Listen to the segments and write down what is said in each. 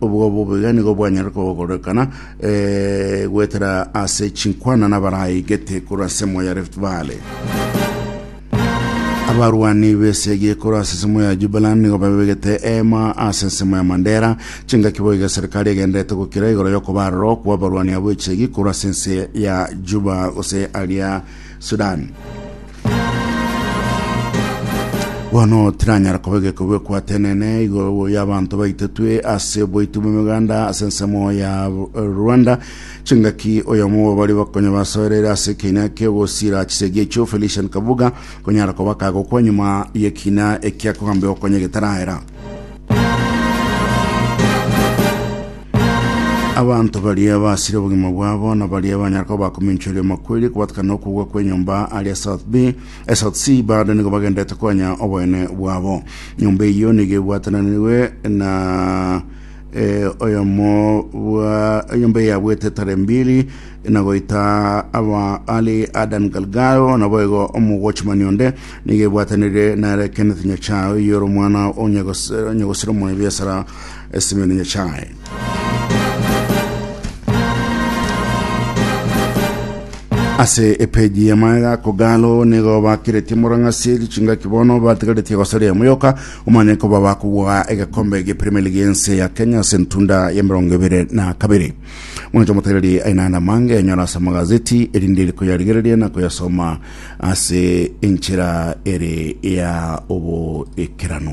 Obwo bobe nigo bwanyare kogorokana eh, goetera ase chinkwana nabaraigete korwa ase emo ya Rift Valley. Abarwani b'esegi korwa ase emo ya Jubaland nigo babegete ema ase ensemo ya Mandera chingaki boiga serikali egenderete gokira igoro y'okobaroro kwa abarwani abo echegi korwa ase ense ya Juba gose aria Sudan. Bono tiranyara koba egekogwe kwatenene igoro y'abanto baitetwe ase oboiti bw'emeganda ase ensemo ya Rwanda chingaki oyomo bwabari bakonya basoerere ase ekina kiogosira chisegi echo Felician Kabuga konyara koba kagokwa nyuma y'ekina ekiakogambia okonya getaraera Abanto baria basire obogima bwabo na baria banyara koba bakominchwa erio makwerie kobatakana nokogwa kwenyomba aria South B eh, South C bado nigo bagendete konya oboene bwabo nyomba eyo nigo ebwatananirwe na eh, oyomo bwa enyomba eyabwete tare mbili na goita aba ali Adan Galgao na boigo omogochimani onde nigo ebwatanire nare Kenneth Nyachae oyoro omwana onyagosira omwana biasara Esimeo ne Nyasae. ase epeji ya maega kogalo nigo bakiretie morang'asi chingaki bono batigaretie gosaria moyoka omanye koba bakobua egekombe gia premier league ense ya kenya ase ntunda ya mirongo ebere na kabere mwancho omotereri ainana mange enyora ase amagazeti erinde koyarigereria na koyasoma ase enchera ere ya oboekerano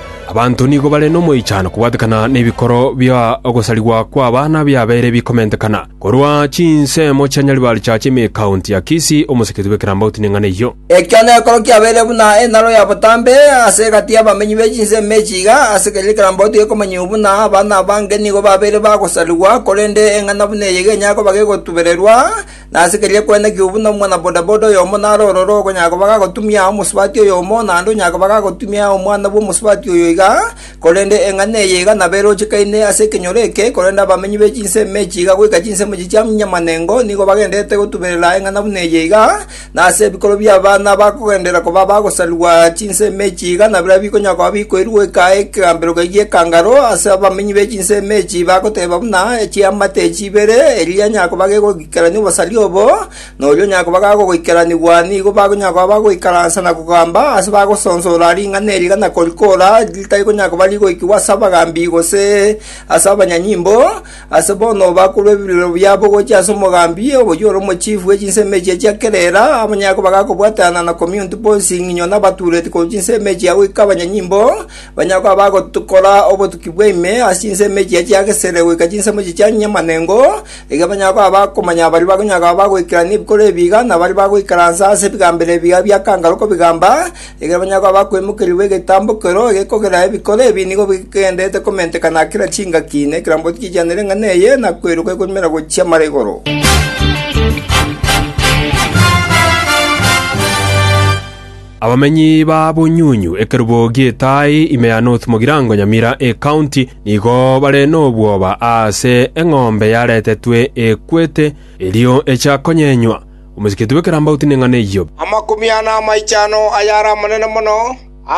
Abanto nigo bare nomoichano kobwatekana nebikoro bia ogosarigwa kw'abana biabeire bikomentekana. Korwa chinsemo chia Nyaribari chiacha ime County ya Kisii, omoseketu bw'ekerambauti neng'ana eyio. Ekio nekero kiabeire buna enaro ya botambe ase egati y'abamenyi be chinsemo echi iga, ase keria ekerambauti gekomanyigwa buna abana abange nigo babeire bagosarigwa, korende eng'ana buna eye iga enyare koba gegotubererwa, Nase keria kwene ki'obo buna omwana bodaboda oyomo nare ororo okonyara koba gagotumia omosubati oyomo, naende onyare koba gagotumia omwana bw'omosubati oyo iga, korende eng'ana eye iga nabo erochekaine ase ekenyoro eke, korende abamenyi be chinsemo echi iga goika chinsemo echi chia Nyamanengo nigo bagendererete gotuberera eng'ana buna eye iga, na ase ebikoro bi'abana bakogenderera koba abagosarigwa chinsemo echi iga nabirobio bikonyara koba bikoirwe goika ekegambero gaiga ekangaro ase abamenyi be chinsemo echi bagoteba buna chiamate echi ibere, eria nyakoba gegoikerania obosaria obo, na oria nyakoba agogoikeranigwa nigo bakonyakoa bagoikaransa na kogamba ase bagosonsora ring'ana eriga na korikora ritari konyakoba rigoikigwa ase abagambi gose ase abanyanyimbo, ase bono bakorwa ebirero biabo gochia ase omogambi oyio ore omochifu bwe chinsemo echio chia kera era, abanyakoba gakobwatanana na Community Policing, inyo nabatureti korwa chinsemo echia goika abanyanyimbo, Banyagwa bagokora obotuki bw'ime ase chinsemo echiya chia Gesere goika chinsemo echiya chia Nyamanengo, erio abanyagwa bakomanya baria bakonyaga bagoikerana ebikoro ebiiga, na baria bagoikaransa ase ebigambero ebiiga bia kangaru kobigamba. Ekero abanyagwa bakwemokerigwa egetambokero egekogera ebikoro ebi nigo bigenderete komenteka na kera chingaki, na ekerambo tikichianire ing'ana eye, na kweiroka ekorumera gochia mara igoro. Abamenyi ba Bunyunyu, ekerubo gi'Etaai, ime ya North Mogirango, Nyamira Ecounty, nigo bare nobwoba aase eng'ombe yaretetwe ekwete, erio echa konyenywa. Omosikiti bw'ekerambauti neng'ana eyio. Amakumi ana amaichano ayare amanene mono, a.